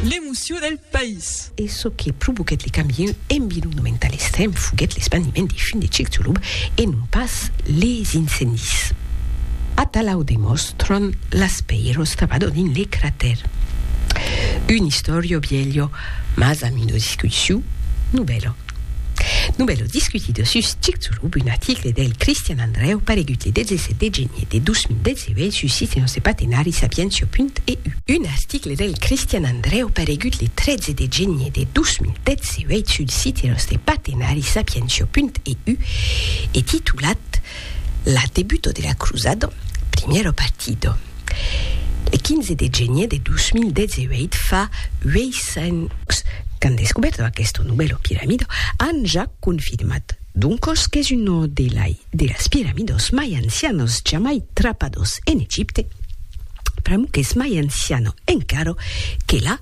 L'emocion del país. E çò que provoquèt le cambieu environnomental extrèm foguèt l'espandiment de fum de Chicxulub e non pas les incendis. Atalà o demòstran las pèiros trabador dins le cratèr. Un historio bielho, mas amb una discussiu novèla. Novèla discutida sus Chicxulub, un article del Cristian Andrèu paregut le 17 de genier de 2019 sus site Nòste Patenari Sapientia.eu. Un article del Cristian Andrèu paregut le 13 de genier de 2018 sul site Nòste Patenari Sapientia.eu e titulat, La debuto de la crusado, primiero partido. Le 15 de genier de 2018 fa 800 qu'an descubèrto aquesto novèlo piramido, an ja confirmat doncos qu'es uno de lai de las piramidos mai ancianos jamai trapados en Egipte, pr'amor qu'es mai anciano encara que la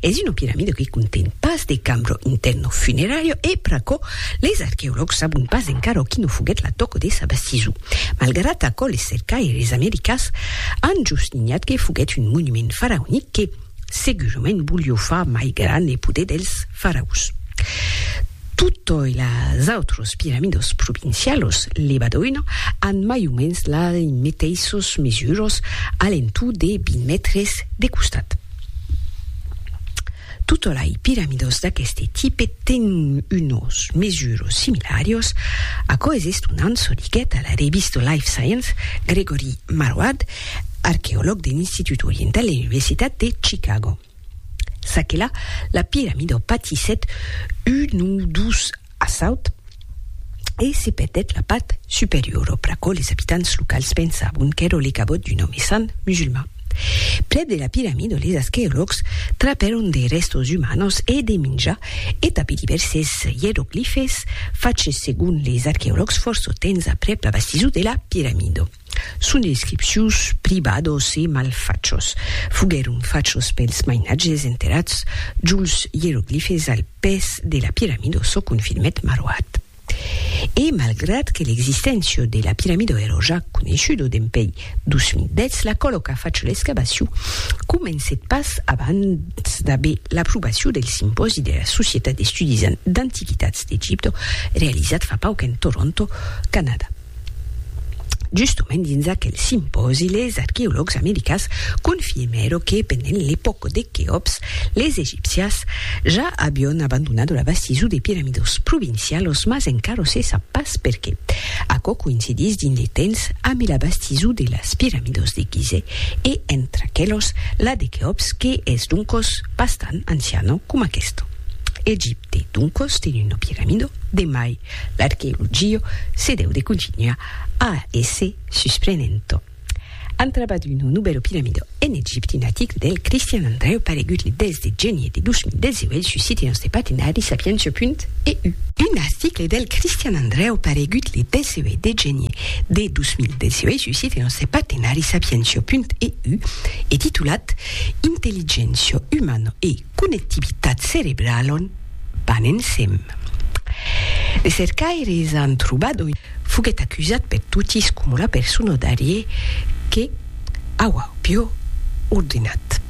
Es una piramida que conten pas de cambro interno funerario e pr'aquò les arqueològs sabon pas encara o quina foguèt la tòca de sa bastison. Malgrat aquò les cercaires americans an jusninhat que foguèt un monument faraonic que segurament volió far mai grand le poder dels faraos. Totòi las autras piramidas provincialas, levadoina, an mai o mens las meteissas mesuras, a l'entorn de 20 mètres de costat. Totolai piramidos d'aqueste tipe ten unos mesuros similarios, aquò es estonant, çò diguèt a la revista Life Science Gregory Marwad, arqueològ de l'Institut Oriental de l'Universitat de Chicago. Çaquelà, la piramida patissèt un o dos A Saut, e se perdèt la part superiora, pr'aquò les abitants locals pensavon qu'èra le cabot d'un òme sant musulman. Prèp de la piramida les asqueològs trapèron de rèstos umanos e de minjar e tanpé divèrses ieroglifes faches segon les arqueològs fòrça temps aprèp la bastisura de la piramida. Son inscripcions privados e malfachos foguèron fachos pels mainatges enterrats jols ieroglifes al pes de la piramida, çò confirmèt Maroat. E malgrat que l'existéncia de la piramida èra ja coneishuda dempèi 2010, la còlo qu'a fach l'excavacion comencèt pas abans d'aver l'aprobacion del simpòsi de la Societat d'Estudis d'Antiquitats d'Egipte realizat fa pauc en Toronto, Canadà. Justement dins aquel simpòsi les arqueològs americas confirmèro que pendent l'epòca de Queops les egipcias ja avion abandonado la bastizo de piramidos provincialos mas encara se sap pas perqué. Aquò coïncidís dins de temps ambe la bastizo de las piramidos de Gizeh e entre aquelos la de Queops que es doncos bastant anciano coma aquesta. Egip. De doncos de Nuno Pieramido de mai l'archeologio se deu de continuar a èsser susprenento. An trabat un nubèro piramido en Egipte un article del Cristian Andreu paregut le 10 de genier de 2018 sus site nòste partenari sapientia.eu. Un article del Cristian Andreu paregut le 18 de genier de 2018 sus site nòste partenari sapientia.eu e titulat Intelligéncia umana e connectivitat cerebralon van ensem. De cercaires an trobado foguèt acusat per totis coma una persona d'ariè que auá piò ordenat.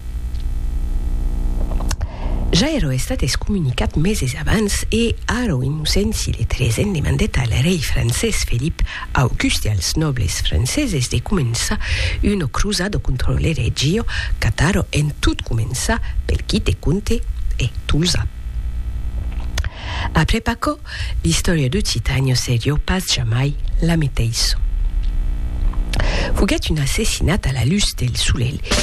Ja èra estat excomunicat meses abans e ara un innocent s'illetrés en demandèt al rei francés Felip Au gust dels nòbles franceses de començar una crusada contra lo Reggio Cataro en tot començar pel quite comte e Tolzà. Après Pacò, l'istòria d'Occitània serió pas jamai la meteissa. Foguèt un assassinat a la lutz del solelh.